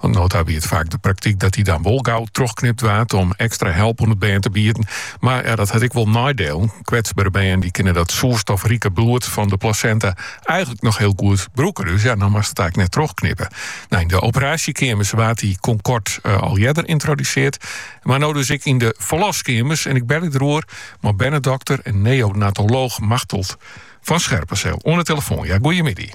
No ta wie it faak de praktyk dat dy dan wol gau trochknipt waard om ekstra help oan it bern te bieden. Mar ja, dat hat ek wol neidielen. Kwetsbere bern dy kinne dat soerstofrike bloed fan de plasenta eigenlik noch hiel goed brûke, dus ja, dan moatst it eigenlik net trochknippe. Nou, yn de operasjekeamers waard dy Concord eh, al earder yntroduseard, mar no dus ek yn de ferloskeamers. En ik belje deroer mei bernedokter en neonatolooch Machteld van Scherpenzeel oan 'e telefoan, ja, goeiemiddag.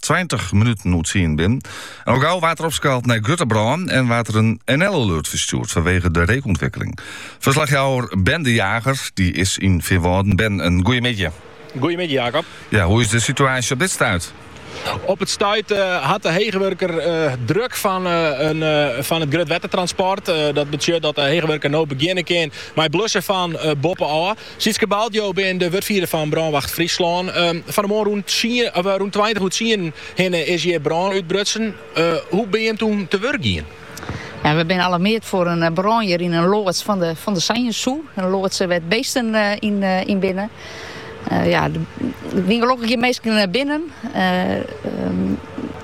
20 minuten oer tsien binnen en al gau waard der opskaald nei grutte brân en waard der in NL-alert ferstjoerd fanwege de reekûntwikkeling. Ferslachjouwer Ben de Jager dy is yn Feanwâlden. Ben, in goeiemiddei. Goeiemiddei Jacob. Ja, hoe is de situaasje op dit stuit? Op it stuit eh, hat de heechwurker eh, druk fan, eh, in, fan it grutwettertransport. Dat betsjut dat de heechwurker no begjinne kin mei it blussen fan boppen ôf. Sietske Balt, jo binne de wurdfierder fan Brânwacht Fryslân. Fan 'e moarn rûn tweintich oer tsienen hinne is hjir brân útbrutsen. Hoe binne jim toen te wurk gien? Ja, we binne alarmeard foar in brân hjir yn in loads fan de Sanjes Zoo. In loads wêr't beesten yn binne. Ja, der wiene gelokkich gjin minsken binnen.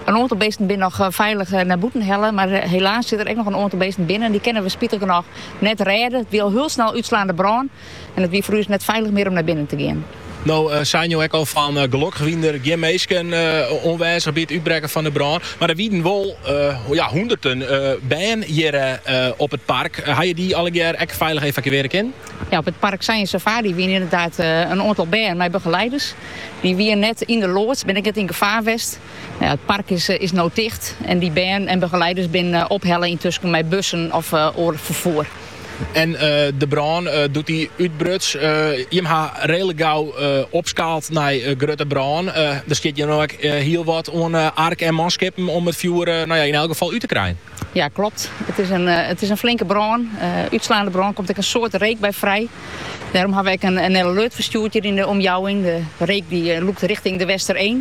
In oantal beesten binne noch feilich nei bûten helle, mar helaas sitte der ek noch in oantal beesten binnen en dy kinne we spitich genôch Net rêde, it wie al hiel snel útslaande brân en it wie foar ús net feilich mear om nei binnen te gean. No seinen jo ek al fan, gelokkich wiene der gjin minsken oanwêzich by it útbrekken fan de brân. Mar der wienen wol hûnderten bern hjir op it park. Ha je dy allegear ek feilich evakuearje kinnen? Ja, op it park Sanjes Safari wiene ynderdaad in oantal bern mei begeleiders. Dy wiene net yn de loads, binne ek net yn gefaar west. Ja, it park is, is no ticht en dy bern en begeleiders binne ophelle yntusken mei bussen of oar ferfoer. En de brân, doe't dy útbruts, jimme ha redlik gau opskaald nei grutte brân. Der stiet hjir no ek hiel wat oan ark en manskippen om it fjoer no ja, yn elk gefal út te krijen. Ja, klopt. It is in, it is in flinke brân. Utslaande brân komt ek in soad reek by frij. Dêrom hawwe we ek in NL-alert ferstjoerd hjir yn de omjouwing. De reek dy lûkt richting De Westereen.